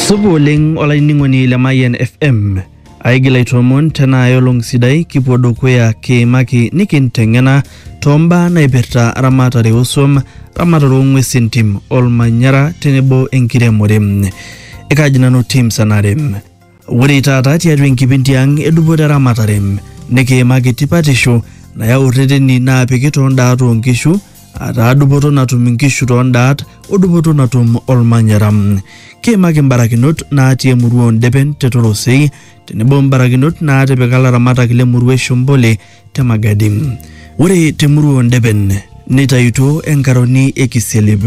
Supa oleng olainining'oni le Mayian FM. Aigil aitoomon tena aelong sidai kipuo dukuya kiimaki nikinteng'ena toombaa naipirta ramatare osuam, ramatare ong'uesi entim, olmanyara tenebo enkiremore. Ekaji nanu Tim Sanare. Ore taata tiatua enkipindi ang edupoto eramatare nikiimaki tipatisho nayau rreteni naapiki too ndaat oo nkishu ataa dupoto natum inkishu too ndaat o dupoto natum olmanyara. Kiimaki mbarakinot naatii emurua oo Ndepen te Torosei tenebo mbarakinot naatipika laramatak le murua e Shombole te Magadi. Ore te murua oo Ndeben neitayutuo enkaroni e Kisialip.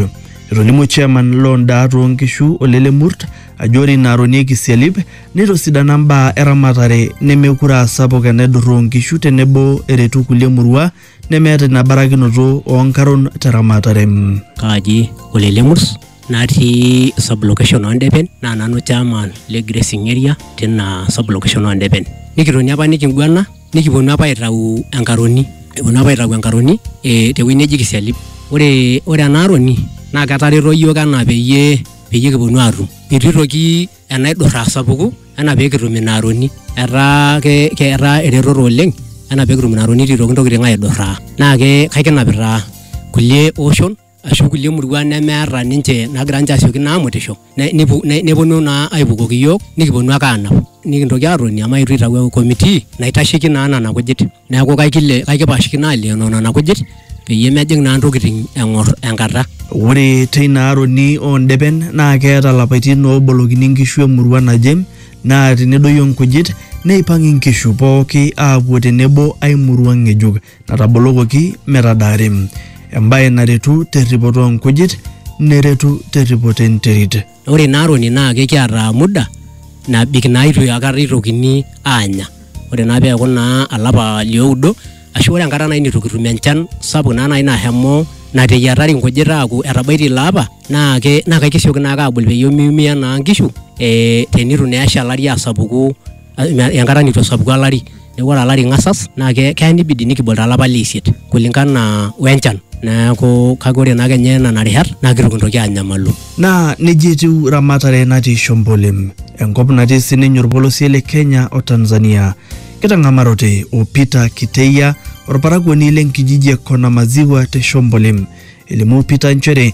Etolimuo chairman loo ndaat oo nkishu Ole Lemurt ajo ore ina aroni e Kisialip neitosidana mbaa eramatare nemekure aa sapuk enaidurra oo nkishu tenebo eretu kulie murua nemeeta ina barakinoto oo nkaron te ramatare. kaaji Ole Lemurs natii sub location oo Ndepen naa nanu chairman le grazing area tina sub location oo Ndepen. Nikitoni apa nikiguana nikiponu apa aitau enkaroni eponu apa aitau enkaroni eh, tewueji neji kisialip ore ore ena aroni naa ketareto iyiook enaa peyie peyie kiponu atum itu itoki enaidurra asapuku enaa pekitum ina aroni etaa ke, ke etaa eretoto oleng enaa pekitum ina aroni itu itoki intokitin aidurraa naa ke kaikinapita kulie oshon ashu kulie muruan nemeeta ninche nagira ninche asioki naa amutisho ne- nepu- ne- neponu naa aipukoki iyiook nikiponu ake aanap nikintoki aatoni amu aetu aitau committee naitasheki naa nena kujit neeku kaikile kaikipashikino aalioyo nena kujit peyie mejing naa ntokitin eng'or enkata Ore teina aroni oo ndepen naa keeta lapaitin oobolokini nkishu emurua naje naa tenedoyio nkujit neipang inkishu pooki aapuo tenebo ai murua ng'ejuk. natabolokoki metadaari, embae naretu terripoto oo nkujit neretu terripoto enterit. Ore ina aroni naa kekiata muda nabik naa itu akata itokini aanya. Ore naa peeku naa olapa lioudo ashu ore enkata nai nitu kitum enchan sapuk naa nai nashomo nateyiatari nkujit aaku etabaitie ilo apa naa ke naa kesioki naake abul peyie miumia naa nkishu ee tenitu naa esha olari asapuku. enkata nitu esapuku olari neeku ore olari ing'asas naa ke keya nibidi nikibol taa olapa leisiet kulingana wenchan neeku kake ore naa kenye nana rishat naa kitu kintoki anyamalu. Naa nejia etiu ramatare natii Shombolem, enkop natii sininye olpolosie le Kenya o Tanzania. Kitang'amarote o Peter Kiteia, olparakuoni le nkijiji e Konamaziwa te Shombolem. Elimu Peter nchere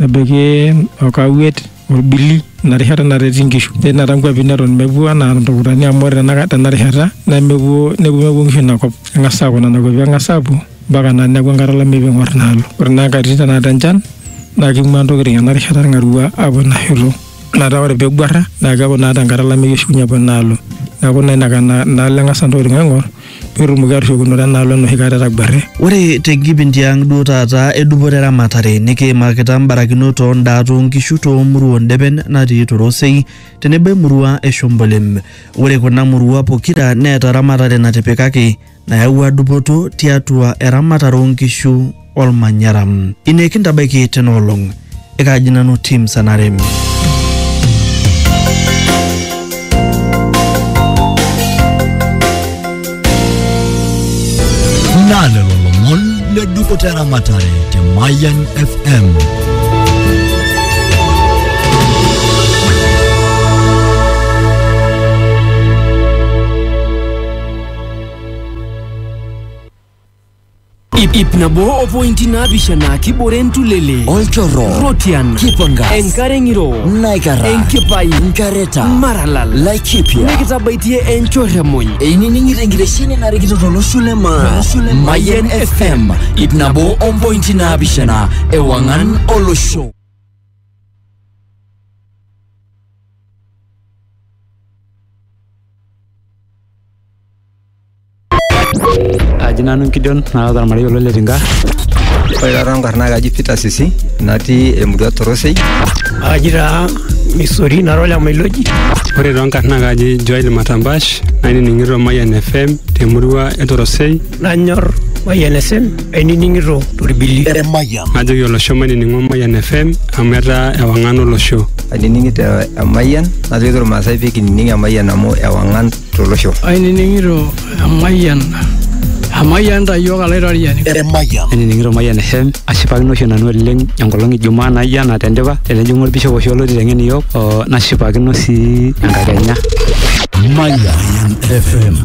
nebaiki okawuet orbili ina rishata nareti inkishu netii inkuapi neton mepuo anaa iltukutani amu ore tenaka- tena rishata nemepuo nemepuo inkishu inakop eng'as aaku nena kuapi eng'as aapuo mpaka naa neeku enkata olameyu piing'orr inaalo ore naa inkatitin tenakata enchan naa king'ua intokitin ena rishata irng'arua aapuo ina shoto metaa ore peeguarra naa keeku naa tenkata olameyu eshukunye apuo enaalo neeku naa inaka- inaalo eng'asa intokitin aing'orr. petumoki atushukunore enaalo enoshi kata etaguarre. Ore te nkipindi ang duo taata e dupoto e ramatare nikiimakita mbarakinot oo ndaa too nkishu too murua o ndepen natii Torosei tenebo e murua e Shombolem. Ore kuna murua pokira neeta ramatare natipikaki nayawua dupoto tiatua eramatare oo nkishu. olmanyara ine kintabaiki tena olong ekaaji nanu tim sanarem naa lelo lomon le dupoto eramatare te Mayan FM. Ip, ip nabo o pointi naapishana kibore entulele olchorro Rotian Kipanga enkare ng'iro Naikara enkipai Nkareta maralal Laikipia nikitabaitie enchorremuny einining'ito enkitesheni narikito tolosho le maa Mayian FM ip nabo o mpointi naapishana ewang'an olosho Aji nanu Gideon naata ormarei olo Letinka. Ore taata nkarn naa kaji Peter Sisi natii emurua Torosei. Aji taa Misori nara ole Mailoji. Ore too nkarn naa kaji Joel Matambash nainining'ito Mayian FM temurua e Torosei. Nanyor Mayian FM ainining'ito torbili. Emayian. Najoki olosho mainining'o Mayian FM amu etaa ewang'an olosho. Ainining'ito Emayian najoki irmaasai pee kinining Emayian amu ewang'an tolosho. Ainining'ito emayian Amayian ta iyiook alaitoriani. Emayian. Ainining'ito Mayian FM ashipakino oshi nanu oleng enkolong e Jumaa naijo ena tendipa tenejing'u olbishop oshi olotii teng'en iyiook oo nashipakino sii enkakenya. Mayian FM.